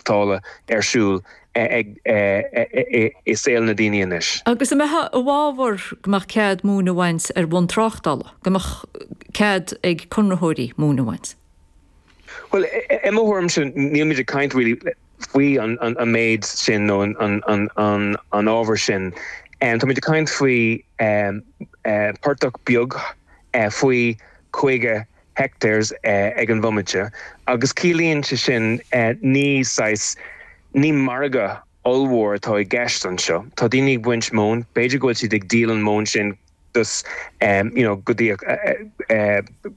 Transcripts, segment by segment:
maireachtála ar siúl i saol na ndaoine anois. Agus an mbeifeá i bhfabhar go mbeadh cead móin a bhaint ar bhonn tráchtála, go mbeadh cead ag conraitheoirí móin a bhaint? Bhuel, i mo thuairimse, nílmid ag caint really faoi an méid sin nó an ábhar sin. Táimid ag caint faoi portach beag faoi 50 hectares ag an bhomaite agus ciallaíonn sin ní saghas, ní margadh ollmhór atá i gceist anseo. Tá daoine ag baint móin, b'fhéidir go bhfuil siad ag díol an mhóin sin you know go dtí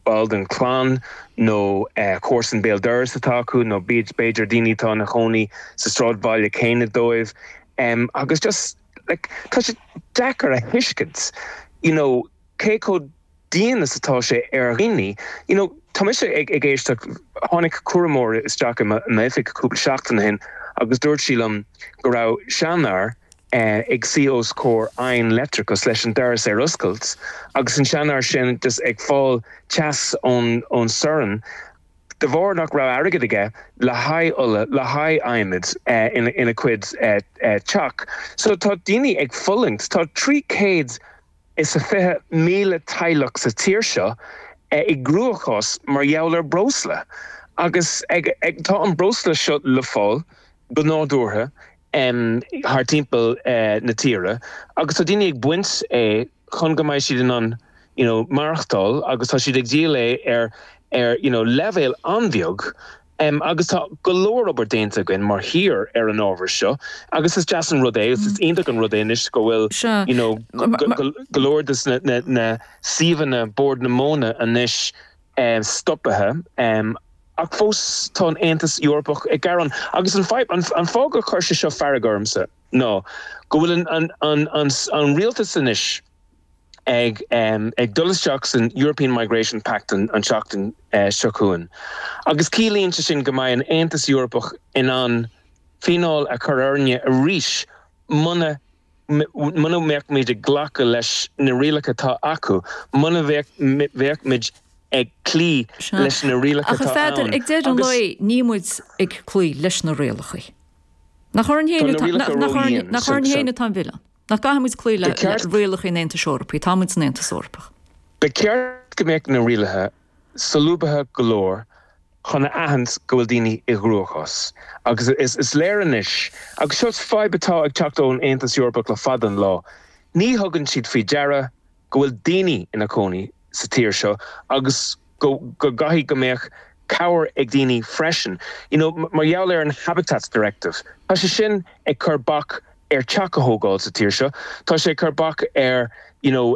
ball den chlann nó comharsan béal dorais atá acu nó b'fhéidir daoine atá ina gcónaí sa sráidbhaile céanna dóibh agus just like tá sé deacair a thuiscint you know cé chomh dian is atá sé ar dhaoine. You know, tá mise ag éisteacht, tháinig cúramóir isteach i m'oifig cúpla seachtain ó shin agus dúirt sí liom go raibh seanfhear ag suí os comhair oigheann leictreach leis an doras ar oscailt agus an seanfhear sin just ag fáil teas ón sorn de bharr nach raibh airgead aige le haghaidh ola, le haghaidh adhmaid ina chuid teach. So tá daoine ag fulaingt, tá 300 is 20,000 teaghlach sa tír seo i gcruachás mar gheall ar breosla agus tá an breosla seo le fáil go nádúrtha thar timpeall na tíre agus tá daoine ag baint é chun go mbeidh siad in ann you know maireachtáil agus tá siad ag díol é ar you know leibhéal an-bheag. Agus tá go leor obair déanta againn mar thír ar an ábhar seo agus is deas an rud é, is iontach an rud é anois go bhfuil you know go leor des na suíomhanna Bord na Móna anois stoptha ach fós tá an Aontas Eorpach ag gearán. Agus an fáth gur chuir sé seo fearg ormsa ná go bhfuil an rialtas anois, ag dul isteach san European Migration Pact an tseachtain seo chugainn agus ciallaíonn sin go mbeidh an Aontas Eorpach in ann fíneáil a chur orainne arís muna, muna mbeimid ag glacadh leis na rialacha atá acu, muna mbeimid ag cloí leis na rialacha atá ann. Ach, a Pheadair, ag deireadh an lae níl muid ag cloí leis na rialacha. Nach orainn féin atá an milleán? Nach gcaithfimid cloí le rialacha an Aontais Eorpaigh? Táimid san Aontas Eorpach. Ba cheart go mbeadh na rialacha solúbtha go leor chun a aithint go bhfuil daoine i gcruachás. Agus is léir anois, agus seo fadhb atá ag teacht ón Aontas Eorpach le fada an lá, ní thugann siad faoi deara, go bhfuil daoine ina cónaí sa tír seo agus go gcaithfidh go mbeadh cabhair ag daoine freisin you know mar gheall ar an Habitats Directive. Tá sé sin ag cur bac ar teach a thógáil sa tír seo, tá sé ag cur bac ar you know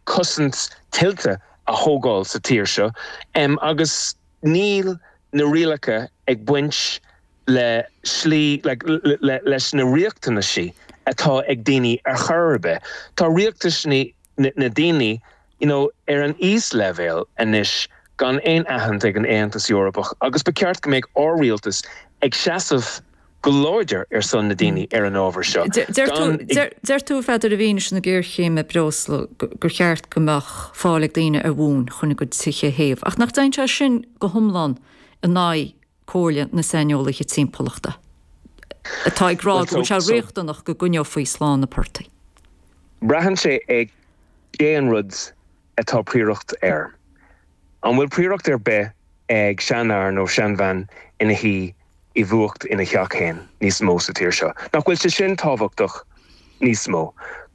cosaint tuilte a thógáil sa tír seo agus. Níl na rialacha ag baint le slí leis na riachtanaisí atá ag daoine ar chor ar bith. Tá riachtanaisí na daoine you know ar an íosleibhéal anois gan aon aithint ag an Aontas Eorpach agus ba cheart go mbeadh ár rialtas ag seasamh go láidir ar son na daoine ar an ábhar seo. Deir tú a Pheadar i bhfianaise na géarchéime breosla gur cheart go mbeadh fáil ag daoine ar mhóin chun a gcuid tithe a théamh, ach nach dtéann sé sin go hiomlán in aghaidh comhairle na saineolaithe timpeallachta atá ag rá go bhfuil sé riachtanach go gcoinneofaí slán na portaigh? Braitheann sé ar cén rud atá prioracht air. An bhfuil prioracht ar bith ag seanfhear nó seanbhean ina shuí i bhfuacht ina theach féin níos mó sa tír seo? Nach bhfuil sé sin tábhachtach níos mó?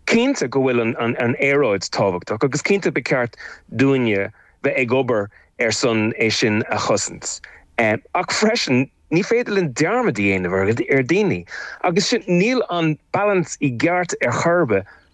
Cinnte go bhfuil an aeráid tábhachtach agus cinnte ba cheart dúinne bheith ag obair ar son é sin a chosaint ach freisin ní féidir linn dearmad a dhéanamh ar dhaoine agus sin, níl an balance i gceart ar chor ar bith.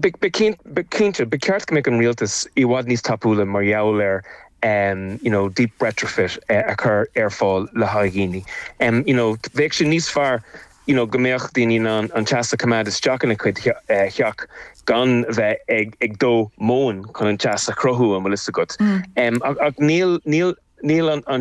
Cinnte, ba cheart go mbeadh an rialtas i bhfad níos tapúla mar gheall ar you know deep retrofit a chur ar fáil le haghaidh dhaoine. You know bheadh sé níos fearr you know go mbeadh daoine in ann an teas a choimeád isteach ina gcuid theach gan bheith ag ag dó móin chun an teas a chruthú an bhfuil fhios agat. Ach níl níl níl an